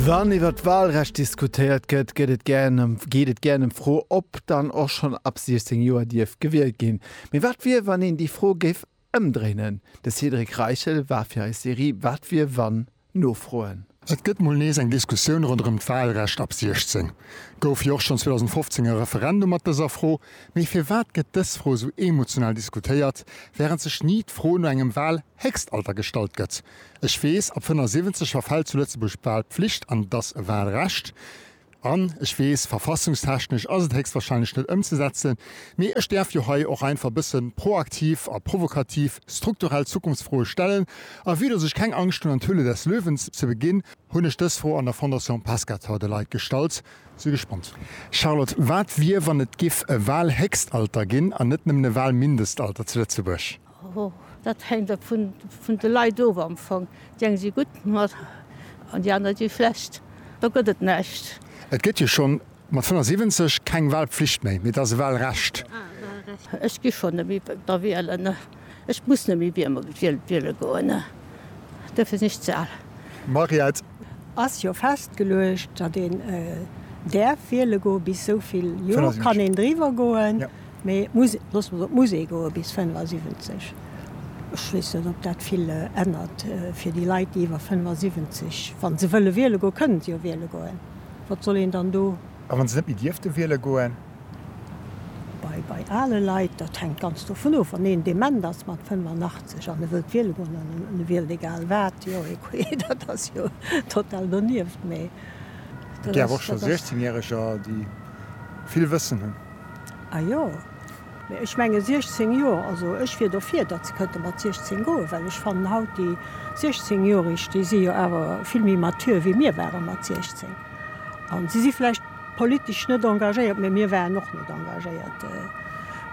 Wann iwwer d'Wahlrecht diskutéiert gëtt, gëtt et gären ëm geet et gären ëm d'Fro, ob dann och schonn ab 16 Joer dierf gewielt ginn. Mee wat wier, wann een déi Fro géif ëmdréinen? De Cédric Reichel war fir eis Serie Wat wier, wann? nofroen. Et gëtt mol nees eng Diskussioun ronderëm d'Wahlrecht ab 16. Gouf jo och schonn 2015 e Referendum mat dëser Fro. Mee firwat gëtt dës Fro esou emotional diskutéiert, wärend sech ni d'Fro no engem Wahlhéchstalter gestallt gëtt? Ech weess, ab 75 verfällt zu Lëtzebuerg d'Wahlpflicht, an et ass e Wahlrecht. An ech weess, verfassungstechnesch ass et héchstwahrscheinlech net ëmzesetzen. Mee ech däerf jo hei och einfach e bësse proaktiv a provokativ strukturell Zukunftsfroe stellen. A vue dass ech keng Angscht hunn, an d'Höhle des Löwen ze beginn, hunn ech dës Fro an der Fondation Pescator de Leit gestallt. Si gespannt. Charlotte, wat wier, wann et giff e Wahlhéchstalter ginn an net nëmmen e Wahlmindestalter zu Lëtzebuerg? Dat hänkt ab vun de Leit of am Fong. Déi eng si gutt mat an déi aner si schlecht. Do gëtt et näischt. Et gëtt jo schonn mat 75 keng Walpflicht méi, mee et ass e Walrecht. Ech gi schonn net méi da wielen. Ech muss net méi wiele goen. Duerfir sinn ech ze al. Mariette, Ass jo festgeluecht, datt een däerf wiele goen, bis esou vill Joer kann een driwwer goen, mee muss, loosse mer soen, et muss ee goen bis 75. Ech weess net, ob dat vill ännert fir déi Leit, déi iwwer 75, wa se wëlle wiele goen, kënnen se jo wiele goen, wat soll een dann do. A wa se net méi dierfte wiele goen? Bei ale Leit, dat hänkt ganz dovun of, wann een dement ass mat 85 an e wëllt wiele goen an e wielt egal wat, jo, écouez, dat ass jo total donieft. Mee Et gär awer och scho Sechzehnjähreger, déi vill Wëssen hunn. A jo, mee ech menge 16 Joer, also ech wier dofir, datt se kënnte mat 16 goen, well ech fannen haut déi Sechzehnjoreg, déi si jo awer vill méi mature wéi mir ware mat 16 a si si vläicht, Politesch net engagéiert, mä mir waren och net engagéiert.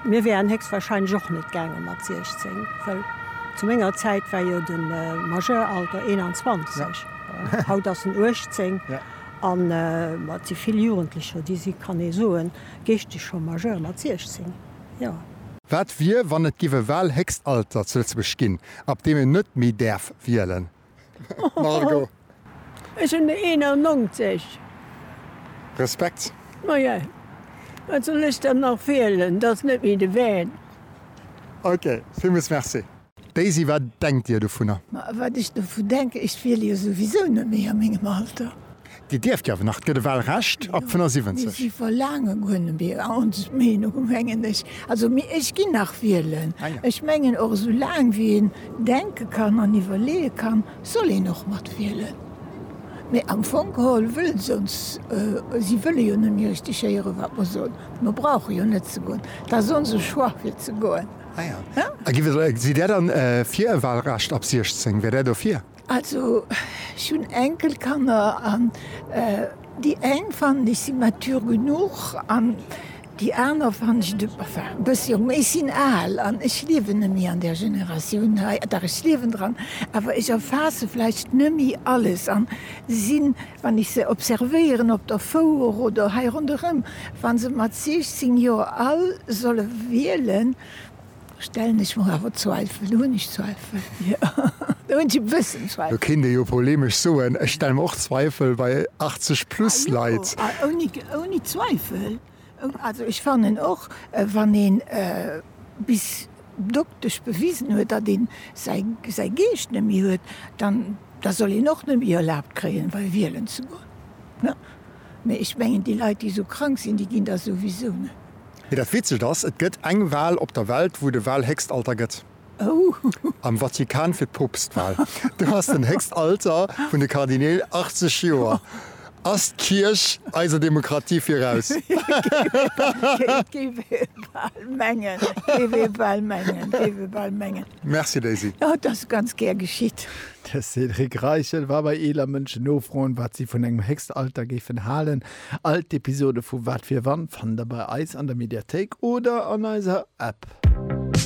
Mir wären héchstwahrscheinlech och net gaange mat 16, well zu menger Zäit war jo de Majeuralter 21, haut ass en 18. An et si vill Jugendlecher, déi si, kann ee soen, geeschteg scho majeur mat 16, jo. Wat wier, wann et giff e Wahlhéchstalter zu Lëtzebuerg ginn, ab deem een net méi däerf wielen? Margot. Ech hunn der 91. Respekt. Maja, wat soll ech dann nach wielen? Dat ass net méi de Van. Ok, villmools Merci. Daisy, wat denkt Dir dovunner? Ma wat ech dovu denken, ech wiele jo souwisou net méi a mengem Alter. Dir dierft jo awer nach, et gëtt e Wahlrecht ab 75. Ech verlaange guer net méi Ons Meenung, mengen ech. Also mee ech ginn nach wielen. Ech mengen och, esou laang wéi een denke kann an iwwerleeë kann, soll een och mat wielen. Mee am Fong geholl wëllen se ons, si wëlle jo net méi richteg héieren, wat mer soen. Mer brauche jo net ze goen. Et ass onse Choix fir ze goen. A sidd Där dann fir e Wahlrecht ab 16? Wär Där dofir? Also ech hunn Enkelkanner an déi eng fannen ech si mature genuch an déi aner fannen ech de, enfin e bëssi jong, mee ech sinn al an ech liewen nemmi an där Generatioun hei, dach ech liewen dran, awer ech erfaasse vläicht nemmi alles an sinn, wann ech se observéieren op der Fouer oder hei ronderëm, wa se mat 16 Joer all solle wielen, Stellen ech mer awer Zweifel, hunn ech Zweifel, jo, do hunn ech e bëssen Zweifel. Lo kéint ee jo polemesch soen, ech stelle mer och Zweifel bei 80 plus Leit. Ah jo, ouni, ouni Zweifel. Also ech fannen och, wann ee bis doktesch bewisen huet, datt ee säi, säi Geescht net méi huet, dann, da soll een och net méi erlaabt kréien, wei wielen ze goen. Mä ech mengen, déi Leit, déi esou krank sinn, déi ginn da souwisou net. Mee dat Witzegt ass, et gëtt eng Wal op der Welt, wou de Walhéchstalter gëtt. Am Vatikan fir d'Poopstwal. Do ass den Héchstalter vun de Kardineel 80 Joer. Ass d'Kierch eiser Demokratie viraus? Géif ee bal mengen, géif ee bal mengen, géif ee bal mengen. Merci Daisy. Jo, et ass ganz gär geschitt. De Cédric Reichel war bei eeler Mënschen nofroen, wat si vun engem Héchstalter géifen halen. All d'Episode vu Wat wier wann fannt der bei eis an der Mediathéik oder an eiser App.